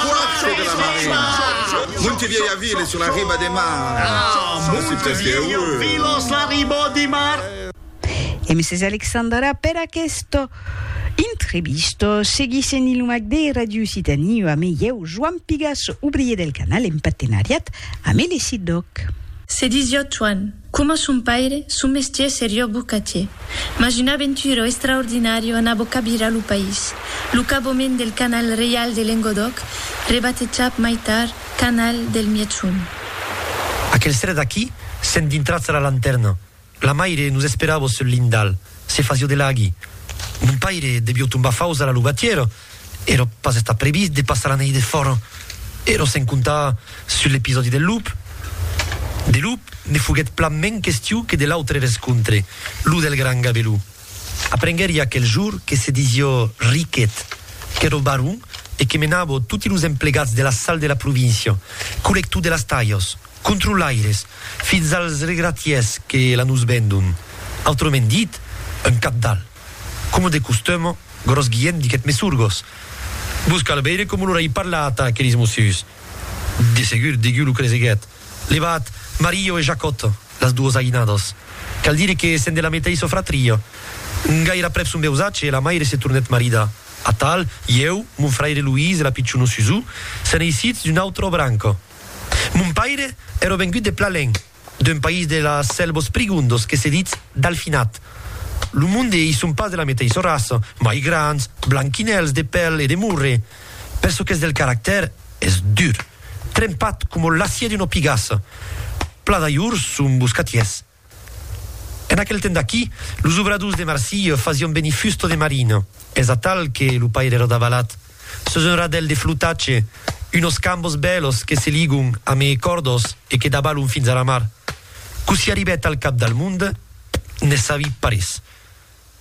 Quacho de la Marina. Montevièlha ville sur la riba de mar. Ah, Montevièlha ville sur la riba de mar. E Mrs. Alexandra per aquesta entrevista. Seguissent Ilumac de Radio Occitanie o amé ieu, Joan Pigas, obrier del canal en partenariat amé le Siddoc. Se disio Toan. Coma son paire, son mestier serió bocatier, mas una aventura extraordinària anà bocavirar lo país, lo cabament del Canal Reial de Lengodòc, rebatejat mai tard Canal del Mièg-Sond. Aquel seret aquí, sent dintrats a la lantèrna, la maire nos esperava sul lindal, se fasió de laghi. Mon paire devió tombar faus a la lugatièra. Èra pas estat previst de passar la nèit defòra, èra sen comptar sus l'episòdi del lup. De lup, ne foguèt plan mens question que de l'autre rescontre, lo del gran Gabelú. Aprenguèri aquel jorn que se disiá Riquet, qu'èra baron e que menava toti los emplegats de la sal de la província, collector de las talhas, controlaires, fins als regratièrs que la nos vendon, autrament dit, un cabdal. Coma de costuma, Gròs Guilhèm diguèt Mesurgos, Vos cal veire coma lor ai parlat a aqueris mosius. De segur, deguiu lo creseguèt, levat Mario e Jacòt, las duos aïnados. Cal dire que sèn de la meteissa fratria. Gair'aprèp son veusatge, la maire se tornèt marida. Atal, ieu, mon fraire Luís e la pichona Susù, sèn eissits d'una autra branca. Mon paire èra vengut de Plalenc. D'un país de las selvos prigondos que se ditz Dalfinat. Lo monde ei son pas de la meteissa raça, mai grands, blanquinèls de pèl e de morre. Per çò qu'es del caractèr, es dur, trempat coma l'acier d'una pigassa. Pla d'ajors son boscatiers. En aquel temps d'aquí, los obradors de Marsilha fasián venir fusta de marina, es atal que lo pair èra davalat. Sus un radèl de flotatge, unos cambos bèlos que se ligon a meé còrdos e que dabalon fins a la mar. Cossí arribèt al cap del mond, ne sabi parés.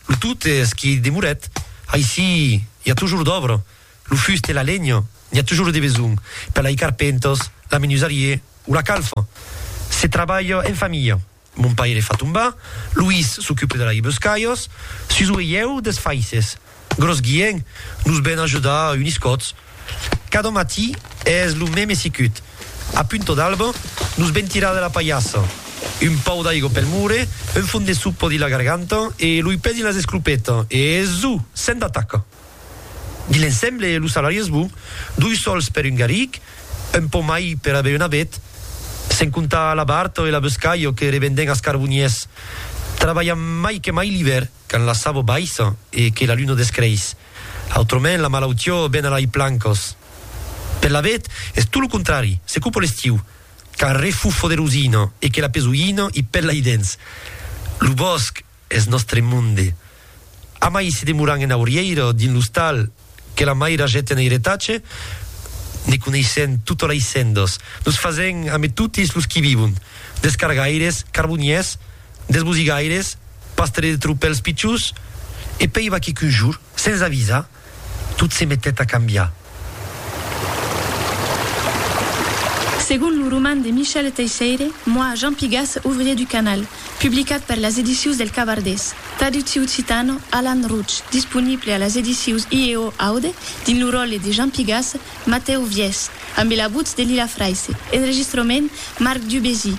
Lo tot es qu'i demorèt. Aicí i a tojor d'òbra. Lo fust e la lenha n'i a tojor de besonh, per lai carpentos, la menusarié o la calfa. Se trabalha en familha. Mon paire fa tombar, Luís s'ocupe de laibes caios, Suso e ieu des faisses. Gros guien, nos ven ajudar unis còts. Cada matí es lo meme sicut. A punto d'alba, nos ven tirar de la palhassa. Un pau d'aigo pel mure, un fon de sopa dins la garganta e loi pè dins las esclopetas e zu! Sèm d'ataca! Di l'ensemble, lo salari es bon, doi sòls per un garric, un pò mai per aver un avet, sen comptar la barta e la boscalha que revenden as carboniers. Trabalhan mai que mai l'ivèr, quand la savo baissa e que la luna descreis. Autrament, la malautiá ven a lai plancas. Per l'avet, es tot lo contrari, se copa l'estiu, quand refufo de rosina e que la pesoina i pèla i dens lo bòsc. Eth nòstre monde. Amai se demoran en aurièira o dins l'ostal que la mair agèt en eiretatge, ne coneissèn tota la issendos, nos fasèn ame totis los qui vivon, des cargaires, carboniers, des bosigaires, pastre de tropèls pichons, e peiva que qu'un jour, sens avisar, tot se metèt a cambiar. Segon lo roman de Michel Teisseire, Moi, Jean Pigas, ouvrier du canal, publicat per las edicius del Cabardés, traducciu occitano, Alan Rouch, disponible a las edicius IEO Aude, dins lo ròtle de Jean Pigas, Matèu Viès, ambe la votz de Lila Fraisse, enregistrament, Marc Dubésy,